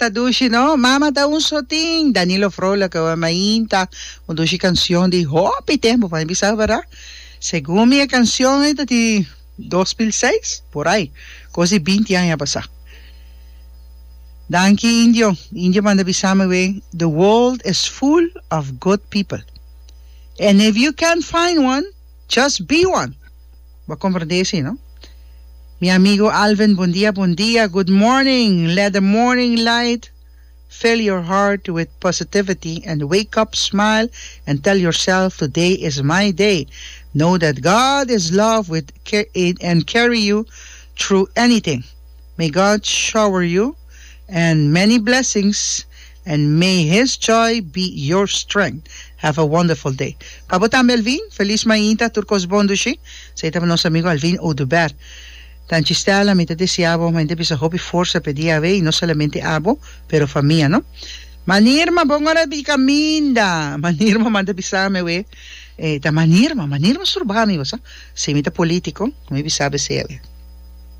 Ta dushi no mama ta un sotin Danilo Vrolijke we mainta un dushi canción di hopi tempo pa mi bisa verdad según mi e canción ei ta di 2006 por ahí cos di binti aña pasa danki indio indio manda bisami we the world is full of good people and if you can't find one just be one Bo comprende así no? Mi amigo Alvin bon dia bon dia good morning let the morning light fill your heart with positivity and wake up smile and tell yourself today is my day know that God is love with and carry you through anything may God shower you and many blessings And may his joy be your strength Have a wonderful day Pa bo tambe Alvin Feliz mainta tur cos bon dushi Sa e ta pa nos amigo Alvin Oduber Tanchi Stella mi ta desea bo mainta bisa hopi forsa pe dia away no solamente abo pero fa mia no Mani Irma bon ora di caminda Mani Irma manda bisami away e ta Mani Irma Mani Irma sturbami bosa si mi ta politico mi bisa bese away.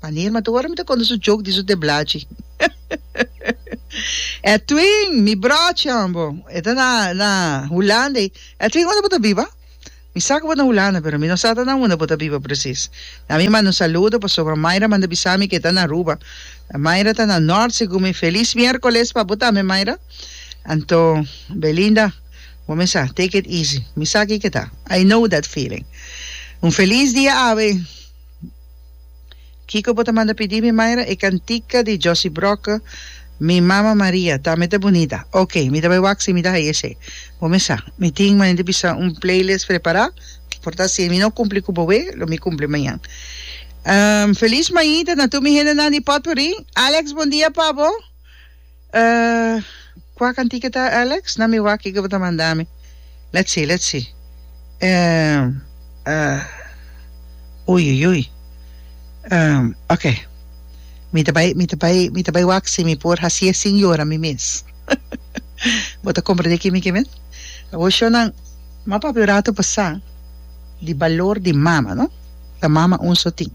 Paneer m'a ta ora mi ta conta su joke di su teblachi. Edwin, mi brocha'n bo e ta na na Hulanda ei. Edwin, unda bo ta biba? Mi sa ku bo ta na Hulanda, pero mi no sa ta na unda bo ta biba presis. Na mi manda un saludo pasobra Myra manda bisa mi ku e ta na Aruba. Myra ta na nort segun mi. Felis mierkoles pa bo tambe Myra. Anto, Belinda, bo mi sa take it easy. Mi sa kiko e ta. I know that feeling. Un felis dia awe. Kiko bo ta manda pidi mi Myra? E cantica di Josy Brokke Mi mama Maria tambe ta bunita. Ok, mi ta bai wak si mi ta haya esey. Bo mi sa, mi tin manera di bisa un playlist prepara, por ta si mi no cumpli cu boe, lo mi cumpli mañan. Feliz mañita na tur mi hendenan di Potpourri. Alex, bon dia pa bo. Uh, kua kantika e ta, Alex? Na mi wak kiko bo ta manda mi. Let's see, let's see. Um, uh, ui, ui, ui. Um, ok. Mi ta bai, mi ta bai, mi ta bai wak si mi por hasi e sin yora mi mes. Bo ta komprendé kimi ke men? Awor shornan, m'a papia un ratu pasá di balor di mama, no? Ta mama un so tin.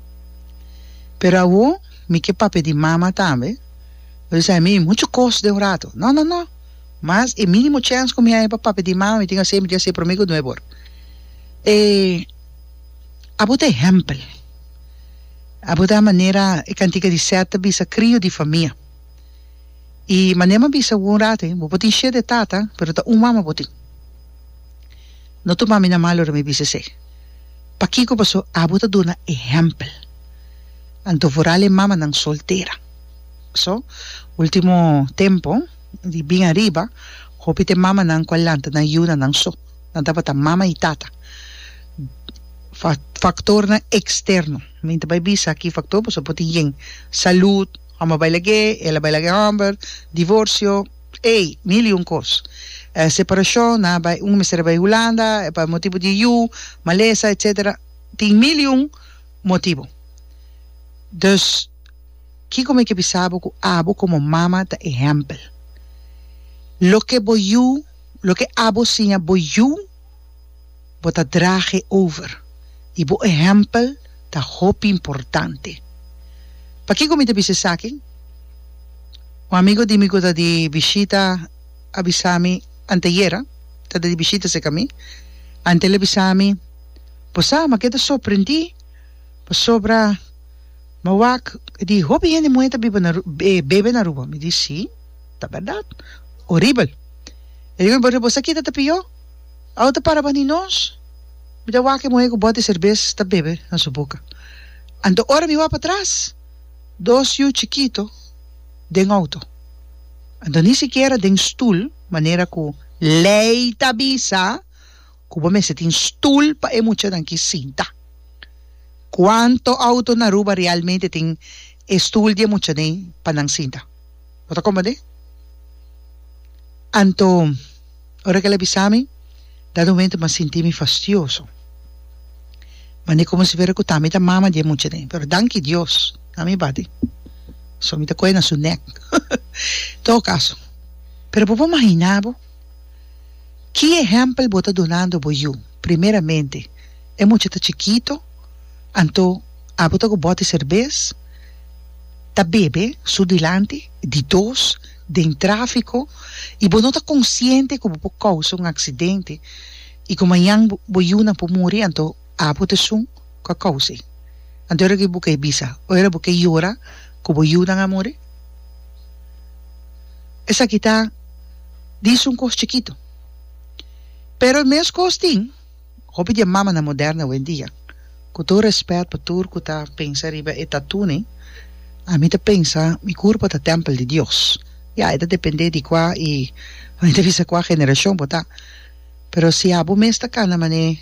Pero awor mi ke papia di mama tambe. Lo di sa, mi mucho cos den un rato. No, no, no. Mas e minimo chance cu mi haya pa papia di mama, mi tin haci e mi tin haci e prome cu nuevo or. E, abo ta ehempel. Abo ta manera e cantica di Seth ta bisa, crio di famia. Y manera mi a bisa bo un rato he, bo por tin shete tata, pero ta un mama bo tin. No tuma mi na mal ora mi bisa esey. Pakico pasobra abo ta duna ehempel. Anto vooral e mamanan soltera. So, ultimo tempo di bin ariba, hopi t'e mamanan ku a lanta nan yu na nan so. Nan tabata mama i tata. Faktornan eksterno, mi ta bai bisa ki faktor pasobra por tin yen, salud, hòmber a bai lag'é, el a bai lag'é hòmber, divorsio, ei, mil i un kos, separashon, nan a bai, unu mester a bai Hulanda, e pa motibu di e yu, malesa, etsetera, tin mil i un motibu. Dus. Kiko mi ke bisa bo ku abo komo mama ta ehèmpel? Loke bo yu, loke abo siña bo yu, bo ta drage over, i bo ehèmpel ta hopi importante. Pakiko mi ta bisa esaki? Un amigu di mi ku ta di bishita a bisa mi anteayera, ta di bishita serka mi, anto el a bisa mi, Bo sa, mi a keda sorprendí pasobra Ma wak di hopi hende muhé ta biba na bebe na Aruba? Mi di sí, ta bèrdat. Oribel. E di mi, Bo sa kita ta pió? Awe ta para bani nos? Mi ta wak e muhé ku bòt di serbes ta bebe na su boka. Anto ora mi wak patras, dos yu chikito den outo. Anto ni sikiera den stul, manera ku lei ta bisa. ku bo mester tin stul pa e muchanan ki sinta. Kuantu outo na Aruba realmente tin e stul di e muchanan pa nan sinta? Bo ta komprendé? Anto, ora ku el a bisa mi, dado momento mi a sinti mi fastioso. Manera komo si fuera ku ta mi ta mama di e muchanan. Pero danki Dios, nan a mi bati. So, mi ta kohe na su nèk. En todo kaso, pero bo por imaginá bo? Ki ehèmpel bo ta dunando bo yu? Primeramente, e mucha ta chikito, anto abo ta ku bòt di serbes, ta bebe su dilanti, di dos, den tráfiko, i bo no ta konsiente ku bo por kousa un aksidente i ku mañan bo yunan por muri, anto. Apo ta sun cu a causi. Anto ora cu bo ke bisa, oi ora bo ke yora cu bo yunan a muri? Esaki ta di sun cos chikito. Pero e mes cos tin hopi di e mamanan moderna hoendia. Cu tur respet pa tur cu ta pensa riba e tatunan, ami ta pensa mi curpo ta tempel di Dios. Ya, e ta depende di cua y ami ta bisa cua generacion bo ta. Pero si abo mes ta cana mane.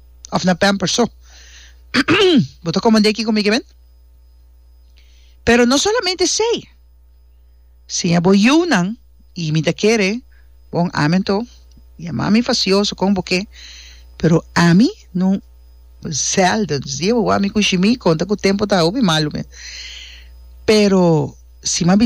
of na pampers so bo ta comande aquí conmigo amen pero no solamente esey siña bo yunan y mi ta kere bon amen to ya mami facioso con bo ke pero ami no zelda dios guard mi con shimi conta cu tempo ta hopi malo mi pero si mami